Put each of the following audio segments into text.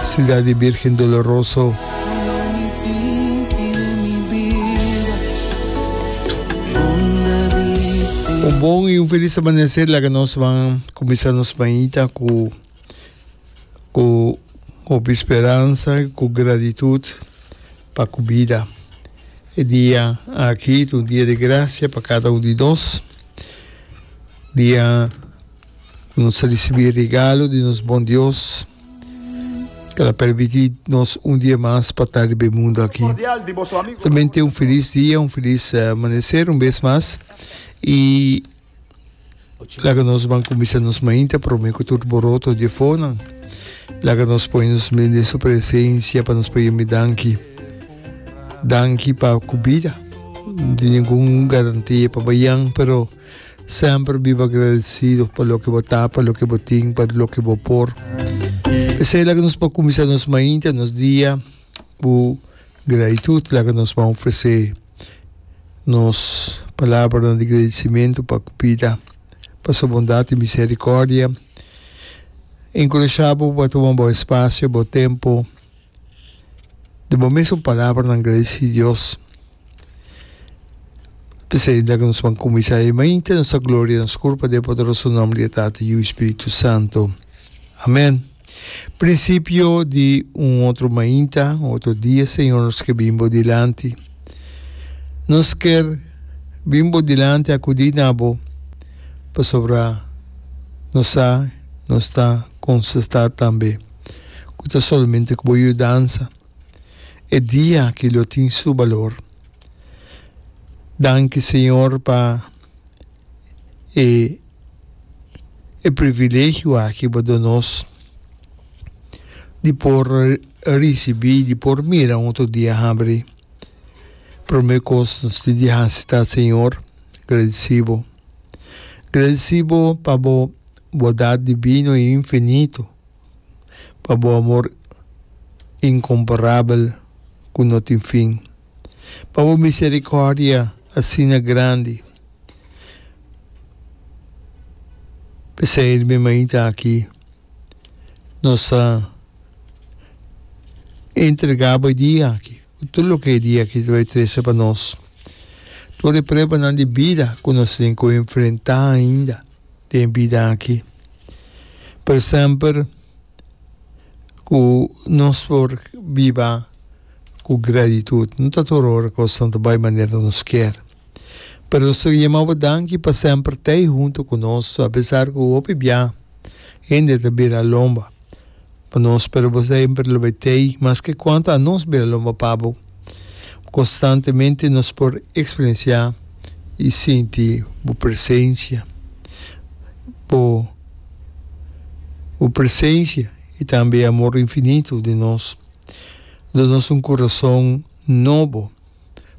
Ciudad di Virgen Doloroso. Un bon y un feliz amanecer laga nos van comienza nos mañita cu cu hopi esperanza y cu gratitud pa cu vida e dia aki ta un dia di gracia pa cada un di nos dia Cu nos a ricibi e regalo di nos bon Dios, cu lo a permiti nos un dia mas pa ta riba e mundo aki. Solamente un feliz dia, un feliz amanecer un bes mas, y laga nos ban cuminsa nos mainta prome cu tur boroto di e fonan. Laga nos pone nos men den su presencia pa nos pudi mi danki. Danki pa cu bida no tin ningun garantia pa bayan, pero. Semper biba agradecido pa loke bo ta, pa loke bo tin, pa loke bo por. P'esei laga nos por cuminsa nos mainta, nos dia cu gratitud. Laga nos ban ofrece nos palabranan di gradicimento pa cu bida, pa su bondad y misericordia. Encurashabo pa tuma bo espacio, bo tempo. di bo mes un palabra nan gradi si Dios p'esei el dal nos pan kuminsá e mainta nos ta gloria nos kurpa den e poderoso nom di e Tata Yu i Spiritu Santo. Amén. Prinsipio di un otro mainta, un otro dia Señor nos ke bin bo dilanti. Nos ker bin bo dilanti akudí na bo pasobra nos sa nos ta konsestá tambe. cu ta solamente cu bo yudansa e dia aki lo tin su balor. Danki Señor pa e e privilegio aki bo do nos di por ricibi, di por mira un otro dia habri. Prome cos nos tin di haci ta Señor gradici bo. Gradici bo pa bo bondad divino y infinito. pa bo amor incomparabel cu no tin fin, pa bo misericordia asina grandi. P'esei di mi mainta aki nos ta entrega bo e dia aki, cu tur loke e dia aki ta bay trece pa nos, tur e pruebanan di bida cu nos tin cu enfrenta ainda. den bida aki. Pero semper ku nos por biba ku gratitud. No ta tur ora kos no ta bai manera ku nos kier. Pero nos ta yama bo danki pa semper tei huntu ku nos, apesar ku hopi biaha hende ta bira lomba. Pa nos, pero bo semper lo bay tey, maske cuanto a nos bira lo papá bo. Constantemente nos por experiencia y sinti bo presencia. Bo, bo presencia y tambe amor infinito den nos, do nos un corazón nobo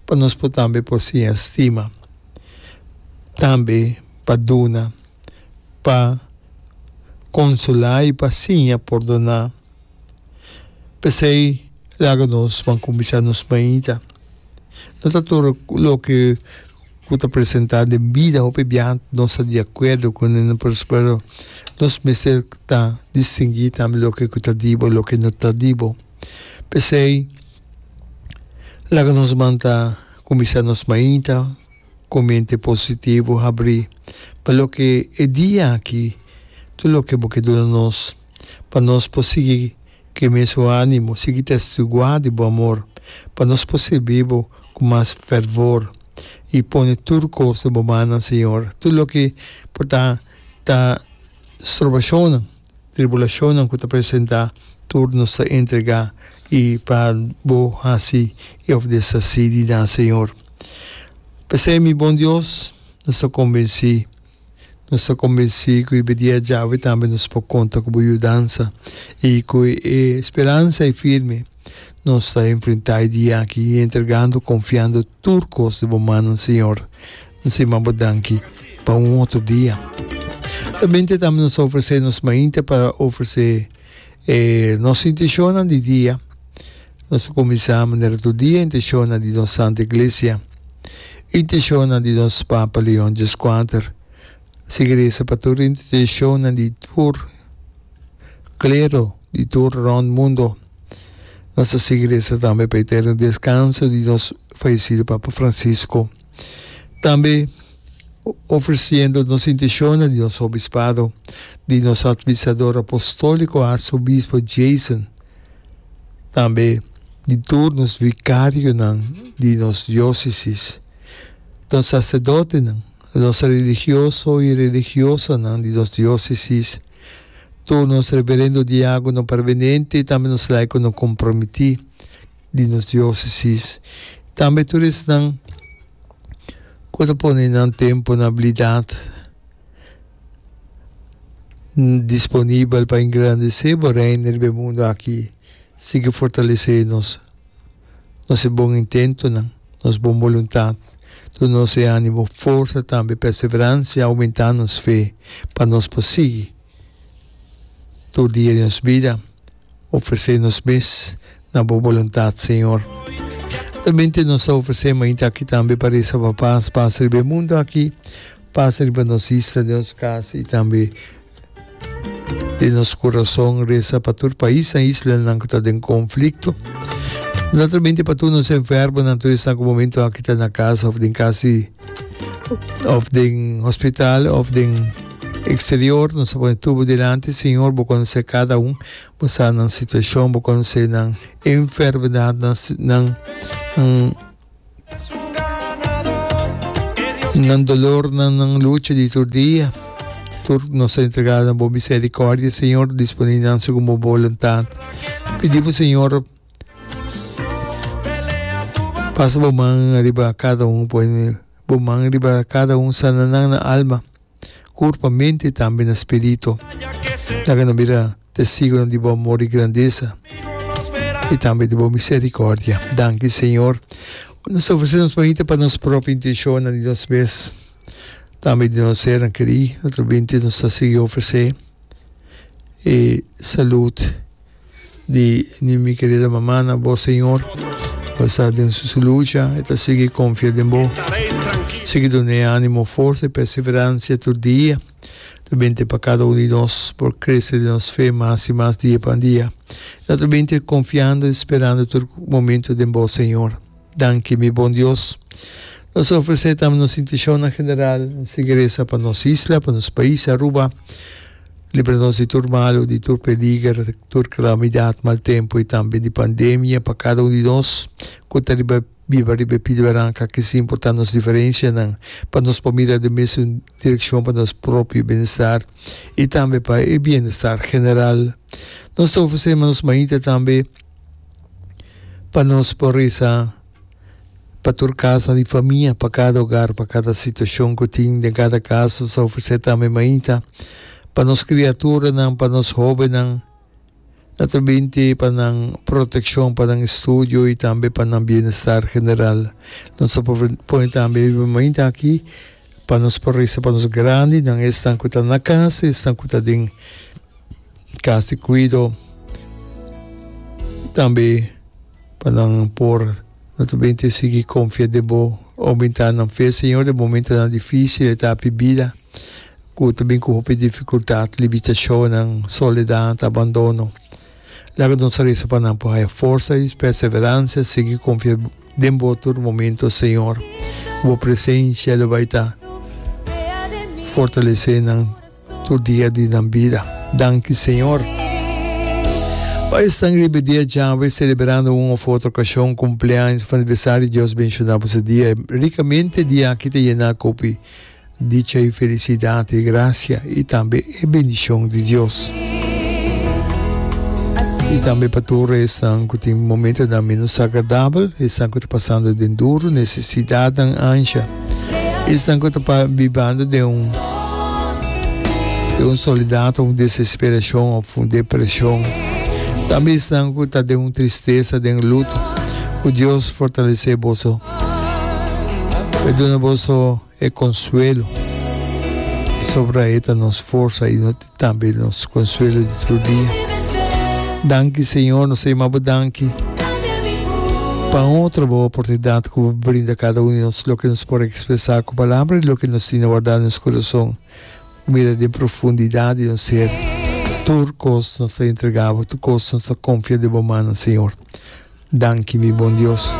pa nos por tambe por siña stima, tambe pa duna. pa konsolá i pa siña pordoná. P'esei laga nos ban kuminsá nos mainta. No ta tur loke ku ta presentá den bida, hopi biaha nos ta di akuerdo ku nan, pero nos mester ta distinguí tambe loke ku ta di bo, loke no ta di bo. P'esei laga nos ban ta kuminsá nos mainta. Ku mente positivo habrí pa loke e dia aki tur loke bo ke duna nos, pa nos por sigui ku e mesun ánimo, sigui testiguá di bo amor, pa nos por sirbi bo ku mas fervor i pone tur kos den bo mannan, Señor, tur loke por ta ta stroba shonnan. Tribulacionnan cu ta presenta, tur nos ta entrega i pa bo haci i of deshaci di nan, Señor. P'esei, mi bon Dios, nos ta convenci, nos ta convenci cu riba dia djawe tambe nos por conta cu bo yudansa i cu e speransa ei firme nos ta enfrenta e dia aki, entregando, confiando tur cos den bo mannan, Señor. N'se man bo danki pa un otro dia. Ta mente tambe nos ta ofrece nos mainte pa ofrece e nos intencionnan di dia. Nos ta cuminsa manera tur dia intencionnan di nos Santa Iglesia, intencionnan di nos Papa Leon Djeskwater, sigui reza pa tur intencionnan di tur clero di tur rond mundo. Nos ta sigui reza tambe pa eterno descanso di nos fallecido Papa Francisco. Tambe ofreciendo nos intencionnan di nos Obispado, di nos Administrador Apostolico Arzobiespo Jason, tambe di tur nos Vicarionan di nos Diocesis, nos Sacerdotenan, nos Religioso y Religiosanan di nos Diocesis, tur nos Reverendo Diagono Permanente y tambe nos Laiconan Comprometi. di nos diosesis, tambe tur esnan cu ta pone nan tempo na abilidad disponibel pa engrandece bo Reino riba e mundo aki, sigui fortalece nos, nos e bon intentonan, nos bon boluntad, tur nos e animo, forsa tambe perseverancia, aumenta nos fe pa nos por sigui tur dia di nos bida. Ofresé nos mes na bo boluntat, Señor. Realmente nos ta ofresé mainta aki tambe pa resa pa pas, pas riba e mundo aki, pas riba nos isla, den nos cas y tambe den nos corazon. Resa pa tur paisnan, islanan cu ta den conflicto. Naturalmente pa tur nos enfermonan, tur esnan cu momentonan aki ta na casa of den cas di. Of den hospital of den exterior nos ta pone tur bo dilanti Señor bo conoce cada un bo sa nan situacion bo conoce nan enfermedad nan nan nan dolor nan nan lucha di tur dia tur nos ta entrega na bo misericordia Señor disponi nan segun bo boluntad pidi bo Señor. Pasa bo man riba kada un, pone bo man riba kada un, sana nan na alma, kurpa, mente i tambe na spiritu. Laga nan bira testigunan di bo amor i grandesa i tambe di bo miserikòrdia. Danki, Señor. Nos ta ofresé nos manita pa nos propi intenshonnan di nos mes, tambe di nos sernan kerí. Otro binte nos ta sigui ofresé e salud. di di mi kerida mama na bo Señor pasa den su su lucha e ta sigui confia den bo sigui done animo forsa y perseverancia tur dia ta bini te pa cada uno di nos por crece den nos fe mas y mas dia pa dia y ta tur bini te confiando y sperando tur momento den bo Señor. Danki, mi bon Dios. Nos ta ofresé tambe nos intishonnan general. N sigui resa pa nos isla, pa nos pais Aruba. Libra nos di tur malu, di tur peliger, tur kalamidat, mal tempu i tambe di pandemia. Pa kada un di nos ku ta riba biba riba e pidi baranka, aki si importá nos diferenshanan, pa nos por mira den mesun direkshon pa nos propio bienestar i tambe pa e bienestar general. Nos ta ofresé nos mainta tambe. Pa nos por reza pa tur casa di famia, pa cada hogar, pa cada situacion cu tin den cada casa. Nos a ofrece tambe mainta pa nos criaturanan, pa nos hobennan, naturalmente pa nan proteccion, pa nan estudio y tambe pa nan bienestar general. Nos a pone tambe e mainta aki. Pa nos por risa pa nos grandi, nan esnan cu ta na cas y esnan cu ta den cas di cuido. Y tambe pa nan por naturalmente sigui confia den bo, aumentá nan fe, Señor, den momentonan dificil eta api bida cu ta bin cu hopi dificultad, limitacionnan, soledad, abandono. Laga nos a resa pa nan por haya forsa i perseverancia sigui confia den bo tur momento Señor. Bo presencia lo bai ta fortalece nan tur dia di nan bida. Danki Señor. Pa esnan riba e dia djawe celeberando un of otro ocasion, cumpleaños of aniversario Dios benciona bo se dia ricamente. Diaki ta yena cu Dicha i felisidat i grasia i tambe e bendishon di Dios. I tambe pa tur esnan ku tin momentunan ménos agradabel, esnan ku ta pasando den duru nesesidatnan ansha, esnan ku ta bibando den un den un solidat òf un desesperashon òf un depreshon, tambe esnan ku ta den un tristesa, den luto. Ku Dios fortalesé boso. E duna boso e konsuelo, pasobra e ta nos forsa i tambe nos konsuelo di tur dia. Danki Señor, nos ta yama Bo danki pa un otrobo oportunidat ku Bo brinda kada un di nos, loke nos por ekspresá ku palabra i loke nos tin wardá na nos kurason. Mira den profundidat di nos ser, tur kos nos ta entregá Bo, tur kos nos ta konfia den Bo mannan, Señor. Danki, mi bon Dios.